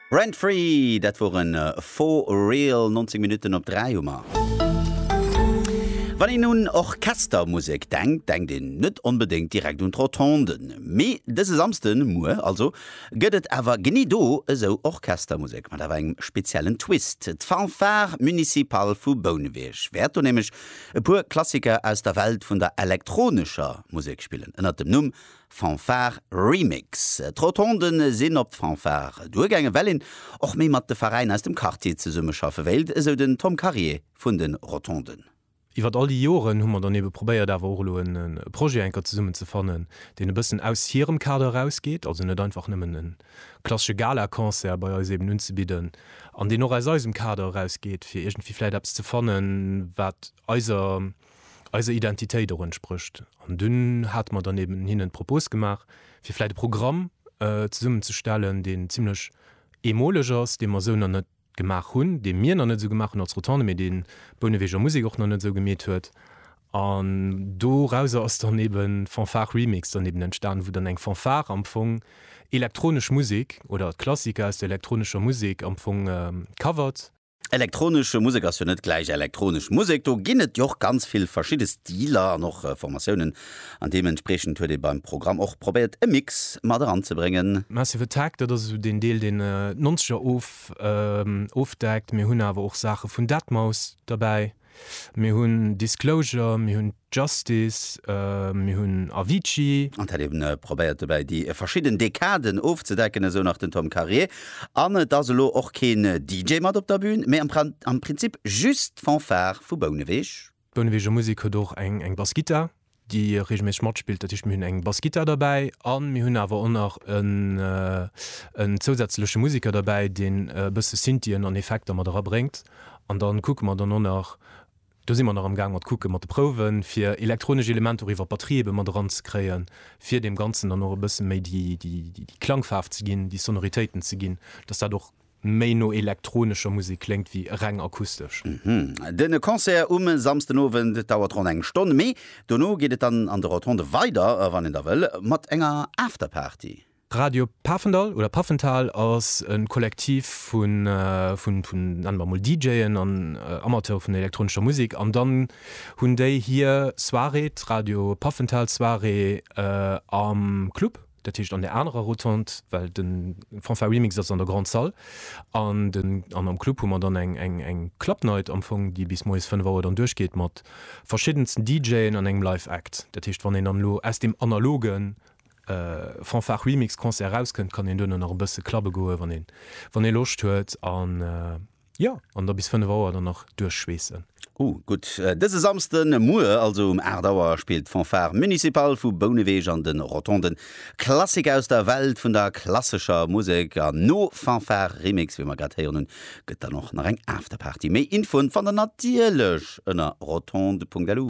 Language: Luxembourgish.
Rent Free, dat woren For Real, 19 Minutten op 3 hu mer. Wann een un Orchestermusek denkt, denkt een net onbedéngt direkt un d'Rotonden. Mee dëse Samsden, muer also, gëtt et awer genee do esou Orchestermusek, mat awer engem speziellen Twist. D'Fanfare Municipale vu Bouneweg wäert do nämlech e puer Klassiker aus der Welt vun der elektronescher Musek spillen, ënnert dem Numm Fanfare Remix. D'Rotonden sinn op d'Fanfare duergaangen, well een och méi mat de Veräiner aus dem Quartier zesummeschaffe wéilt, esou den Tom Karier vun de Rotonden. Iwwert all déi Joren hu mer dann ebe probéiert awer och elo e Projet enker zesummen ze fannen, deen e bëssen aus hirem Kader erausgeet, also net einfach nëmmen e klassesche Galaconcert bei eis eben unzebidden, an deen och aus eisem Kader erausgeet, fir iergendwéi vläit eppes ze fanne wat eiser. eiser Identitéit och entsprécht. An dunn hate mer dann eben hinnen d'Propos gemaach, fir vläicht e Programm zesummenzestellen, deen zimlech eemoleg ass, dee mer esou nach net gemaach hunn, dee mir nach net esou gemaach hunn als Rotonde, mee dee Bouneweger Musek och nach net esou gemeet huet. An dorauser ass dann eben Fanfare Remix dann eben entstanen, wou dann eng Fanfare am Fong elektronesch Musek oder Klassiker aus der elektronescher Musek am Fong covert. Elektronesch Musek ass jo net gläich elektronesch Musek. Do ginn et jo och ganz vill verschidde Stiler an och Formatiounen an deementspriechend huet ee beim Programm och probéiert e Mix mat eranzebréngen. Massive Attack, dat ass esou deen Deel deen d'Nonzeger ofdeckt. Mir hunn awer och Saache vun Deadmau5 derbäi. Mir hunn Disclosure, mir hunn Justice, mir hunn Avicii. Et hätt ee probéiert dobäi déi verschidden Dekaden ofzedecken, esou nach den Tom Karier. An et ass elo och keen DJ mat op der Bün, mee am Prinzip just d'Fanfare vu Bouneweg. D'Bouneweger Musek huet och eng Bassgittar. déi reegelméisseg matspillt, dat heescht mir hunn eng Bassgittar derbäi a mir hunn awer och nach en zousätzleche Museker derbäi, deen e bësse Synthien an Effekter mat erabréngt an da kucke mer dann och nach, do si mer nach am gaang mat kucke mat de Prouwen, fir elektronesch Elementer och iwwer d'Batterie ebe mat eranzekréien, fir deem Ganzen dann och e bësse méi déi Klangfaarf ze ginn, déi Sonoritéiten ze ginn, dass dat och méi no elektronescher Musek kléngt wéi reng akustesch. Den Concert um Samsden Owend dauert ronn eng Stonn, mee dono geet et dann an de Rotonde weider, wann een da wëll, mat enger Afterparty. Radio Pafendall oder Pafenthal ass e Kollektiv vun, nennen mer emol, DJen an Amateure vun der elektronescher Musek an dann hunn déi hir Soirée, d'Radio Pafenthal Soirée am Club. Dat heescht an der anerer Rotonde, well de Fanfare Remix ass an der Grande Salle an den an am Club hu mer dann eng eng eng Club Night am Fong, déi bis moies 5 Auer dann duerchgeet mat verschiddensten DJen an engem Live Act. Dat heescht wann een dann elo aus deem analoge Fanfare Remix Concert erauskënnt, kann een duerno nach e bësse clubbe goe wann ee wann ee Loscht huet an. Jo, an da bis 5 Auer dann nach duerchschweessen. Oh gutt. Dëse Samsde Muer, also um 8 Auer, spillt d'Fanfare Municipale vu Bouneweg an de Rotonden Klassik aus der Welt vun der klassescher Musek. An no Fanfare Remix, wéi mer grad héieren hunn, gëtt dann och nach eng Afterparty. Méi Infoen fannt der natierlech ënner rotonde.lu.